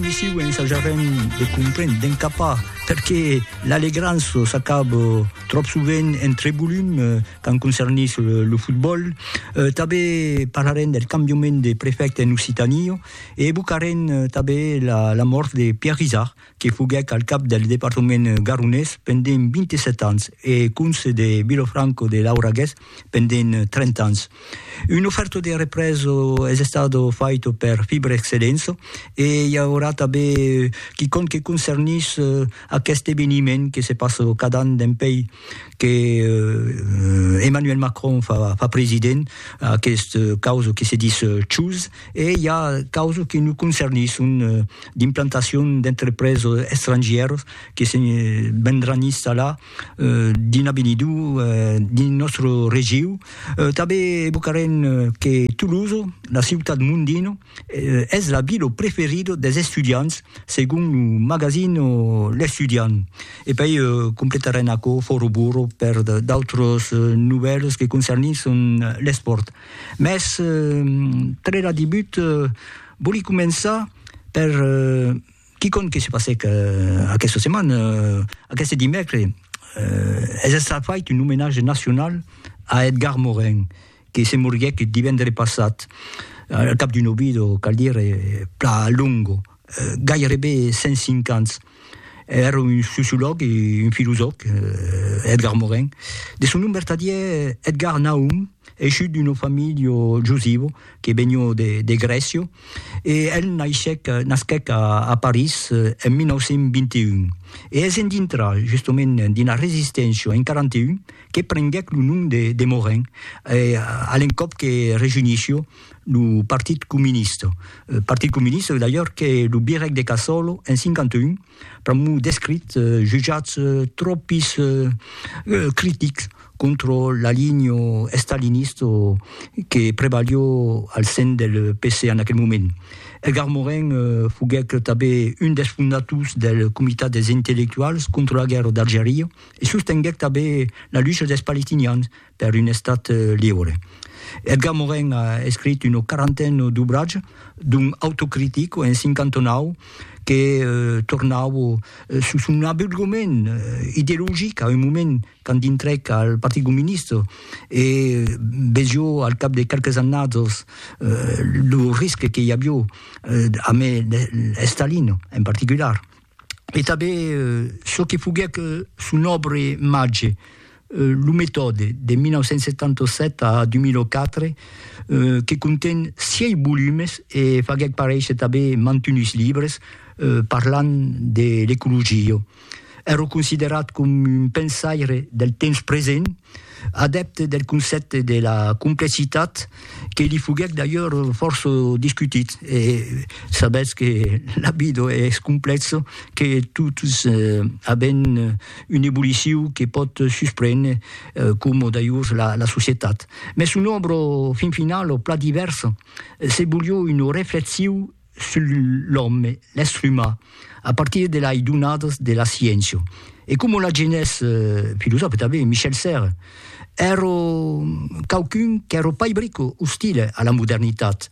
Messiu, ensajarem de comprendre, d'encapar perqué l'Alegranço s'acaba tròp sovent entre volum quand concernís lo fotbòl. Tanbé parlarem del cambiament de prefècte en Occitània e evocarem tanbé la mòrt de Pierre Izard, que foguèc al cap del departament garonés pendent 27 ans e conse de Vilofranco de Lauragués. pendent 30 ans. Un oferto de represo es estado faito per Fibre Excelenso e i aurà tanben quicòm que concernís aqueste eveniment que se passa cada an dempèi que Emmanuel Macron fa president, aquest causa que se dis CHOOSE, e i a causa que nos concernís, son d'implantacion d'entrepreses estrangièras que se vendràn installar, dins avenidor dins nòstre regiu tanben evocarem que Toulouse la ciutat mondina es la vila preferida des estudiants segon lo magazin l'estudiant e pei completarem aquò fòra burro per d'autras novèlas que concernissent l'espòrt mès tre la debut vòli començar per Quicòm que se passèc aquesta setmana, aqueste dimècre, es estat fait un omenatge nacional a Edgar Morin, que se moriguèc divendre passat, al cap d'un ovido, cal dire, plan longo, gairebe 105 ans. Èra un sociològ e un filosòf, Edgar Morin. De son nom vertadièr, Edgar Nahum, Eishut d'una familha jusiva que venió de Grècia e el naishèc, nasquèc a París en 1921. E es en dintrar justament d'una resisténcia en 41 que prenguèc lo nom de Morin a l'encòp que rejunishió lo Partit Comunista. Partit Comunista d'ailleurs que lo virèc de Casòlo en 51 pr'amor d'escrits jutjats tròpis critics contra la linha estalinista que prevalió al sen del PC en aquel moment. Edgar Morin foguèc tanben un dels fondators del Comitat dels Intellectuals contra la Guèrra d'Algeria e sostenguèc tanben la lucha dels palestinians per un Estat liure. Edgar Morin a escrit una quarantena d'obratge, dont Autocritic en 59, que tornava sus son abulgament ideologic a un moment quand dintrèc al Partit Comunista e vesió al cap de qualques annats lo risque que i avió amé Estalin en particular. e tanben çò que foguèc son òbra màger, Lo metòde, de 1977 a 2004, que conten sièis volumes e faguèc paréisher tanben mantunhs libres parlant de l'ecologia. Èra considerat coma un pensaire del temps present, Adèpte del concèpte de la complexitat, que li foguèc d'ailleurs fòrça discutit, e sabètz que la vida es complèxa, que totes avèm un evoluciu que pòt susprene, coma d'ailleurs la societat. Mès son òbra, fin finala, plan divèrsa, se volió una reflexiu, sul l'òme, l'èstre umà, a partir de lai donadas de la sciéncia. E coma l'agenés filosòfe tanben Michel Serres, èro quauqu'un qu'èro pas brico ostile a la modernitat,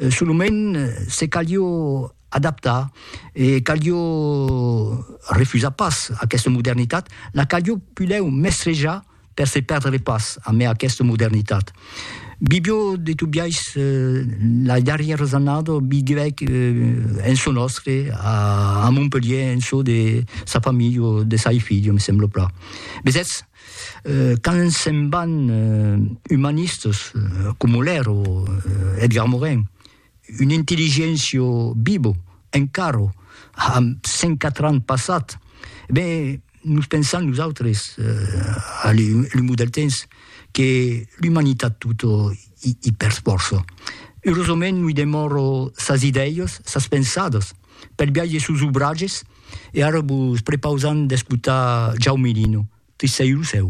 solament se calió adaptar e calió refusar pas aquesta modernitat, la calió pulèu mestrejar, per se perdre pas a mai aquesta modernitat. Bibio de tot biais la darrièras annada vivèc en çò nòstre a Montpelhier en çò de sa familha o de sai filha, me sembla plan. Vesètz, quand se'n van umanistas coma l'èra Edgar Morin, Un intelligentio bibo, encaro, amb 104 ans passat, e ben, nos pensam nosautres, a l'umor del temps, que l'umanitat tota i persfòrça. Eurosament noi demòro sas idèias, sas pensadas, pel biais de sos obratges, e ara vos prepausam d'escotar Jaume Lino, Tristèu lo cèu.